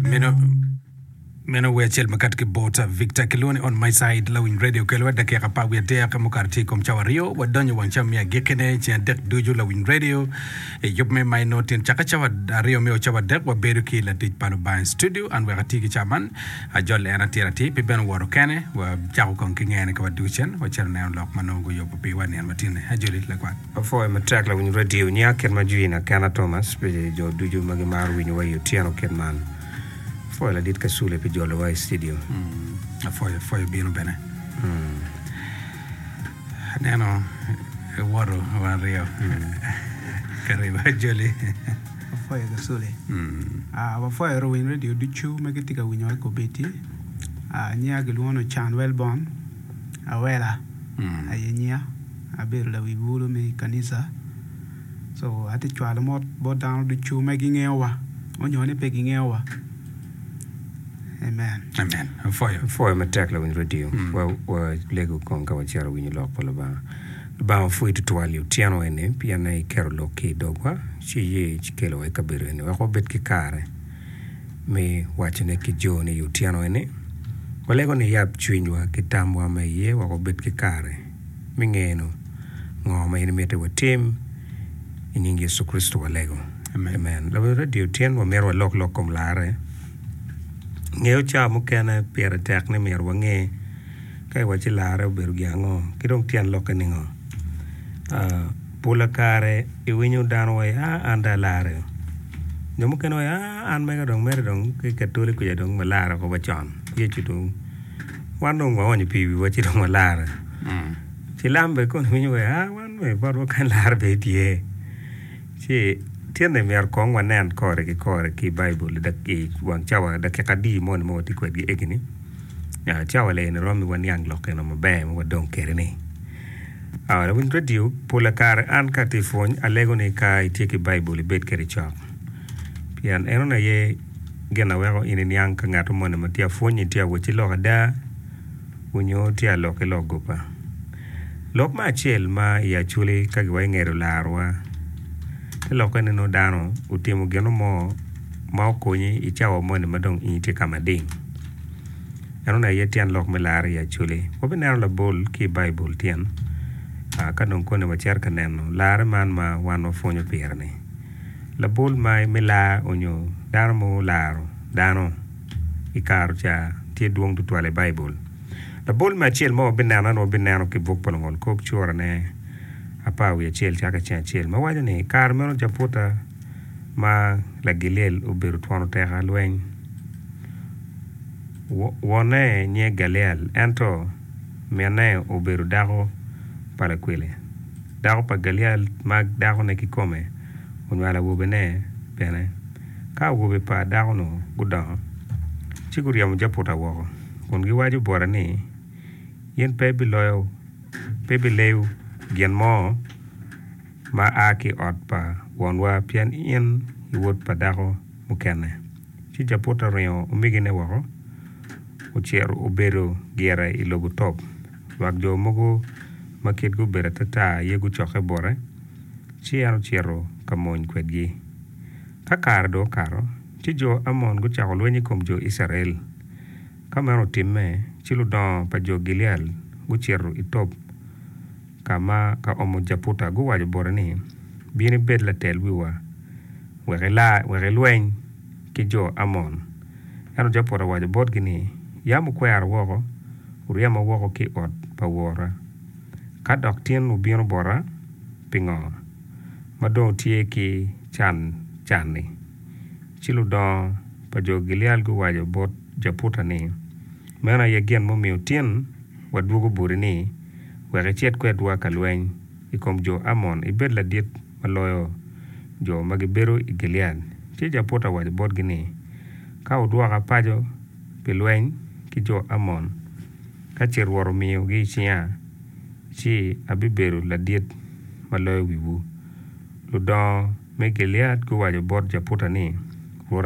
meno meno wer acel makato ki bota victor kilwongo ni on my side lawiny radio kelwa dakika apar wiye adek mukato tye i kom cawa aryo wadonyo wang cawa me agikkine ceng adek ducu lawiny radio i yub me maino tyen caka cawa aryo me o cawa adek wabedo ki latic pa lubanga i studio an wek ati ki cawa man ajol en atir atir pi bene owoto kene wacako kong ki ngene ka waducen wacito neno lok ma nongo guyubo piwa nino matine ajoli lakwat Apwoyo matek lawiny radio nya kit ma Jean Akena Thomas pi jo ducu ma gimaro winyowa i otyeno kit man. Apwoyo ladit Kasule pi jolowa i studio. Apwoyo apwoyo bino bene. Aneno iwoto wa aryo ka riba joli. Wapwoyo Kasule. Ah, wapwoyo luwiny radio ducu ma gitye ka winyowa i Kobeti. Ah, nyinga kilwongo ni Can Welborn. Awela aye nyinga, abedo lawi bulu me i kanica. So atye cwalo mot bot dano ducu ma gingeyo wa nyo ni pe gingeyo wa. Amen. Amen. Apwoyo. Apwoyo matek lawiny radio. Mm. Wa, wa lego kong ka wacito winyo lok pa Lubanga. Lubanga opwoyi tutwal i otyeno eni pien iketo lok ki i dogwa ci iye ci kelowa i kabedo eni wek wabed ki kare me wacone ki jo ni i otyeno eni walego niyab cwinywa ki tamwa ma iye wek wabed ki kare me ngeno ngo ma in imito watim. I nying Yecu Kricito walego. Amen. Labongo Radio Otyeno wamito walok lok kom larre. Ngeyo cawa mukene pire tek ni myero wange ka iwaci larre obedo gin ango ki dong tyen lokke ni ngo. Ah, Pula kare iwinyo dano waye a an dong alarre o. Jo mukene waye a an mega dong mere dong ki katoli kuca dong walarre woko wa con. Yecu dong wan dong waonyo pi wiwa ci dong walarre. Cilam bene kong winyo waye a wan me bot wa kany larre bene tye. Ci tyene myero kong wanen kore ki kore ki Baibul i dak- i wang cawa dakika adi moni ma watye kwedgi egini. Aa, cawa leni romo waniang lok gin ma maber ma wadong kwede-ni. Lawiny radio, Pola kare an ka atye ka pwony alego ni ka itye ki Baibul ibed kwede i cok pien enoni aye gin ma weko in iniang ka ngat moni ma tye ka pwonyi tye ka wot ki lok ada nyo tye ka lok ki lok goba. Lok me acel ma i Acholi ka giwange olarowa, te lokke ni nongo dano otimo gino mo ma okonyi i cawa moni ma dong in itye ka mading. En oneno iye tyen lok me larre i Acholi. Wabineno labol ki i Baibul tyen. Ka dong koni wacito ka neno larre man ma wan wapwonyo pire-ni. Labol ma me lar onyo dano ma olaro dano i kare ca tye dwong tutwal i Baibul. Labol me acel ma wabineno ento wabineno ki i buk pa Lungol Kop cura ne apar wiye acel caka ki cen acel ma waco ni, I kare meno Japuta ma Lagiliel obedo twon oteka lweny. Wonne nyinge Galiel, ento minne obedo dako pa lakwili. Dako pa Galiel ma dakone kikome onywalo awobene bene. Ka awobe pa dako-nu gudongo, ci guryemo Jeputa woko kun giwaco bote ni, 'In pe ibiloyo, pe ibileyo gin mo ma a ki i ot pa wonwa pien in i wod pa dako mukene. Ci Jeputa oringo omegine woko, ocito obedo gire i lobo Tob. Lwak jo mogo ma kitgi obedo atata aye gucokke bote, ci en ocito ka mony kwedgi. Ka kare dong okato, ci jo Amon gucako lweny i kom jo Icrael. Ka meno otimme, ci ludongo pa jo Gilead gucito i Tob. ka ma ka omo Japuta guwaco bote ni, Bin ibed latel wiwa, wek ila, wek ilweny ki jo Amon. Ento Japuta owaco botgi ni, Yam wukwera woko, wuryema woko ki i ot pa wora. Ka dok tin wubino bota, pingo ma dong wutye ki can can-ni? Ci ludongo pa jo Gilead guwaco bot Japuta ni, Meno aye gin mumiyo tin wadwogo boti-ni. wek icit kwedwa ka lweny i kom jo Amon, ibed ladit ma loyo jo ma gibedo i Gilead. Ci Jeputa owaco botgi ni, Ka wudwoka paco pi lweny ki jo Amon, ka ce Rwot omiyogi i cinga, ci abibedo ladit ma loyo wiwu. Ludongo me Gilead guwaco bot Jeputa ni, Rwot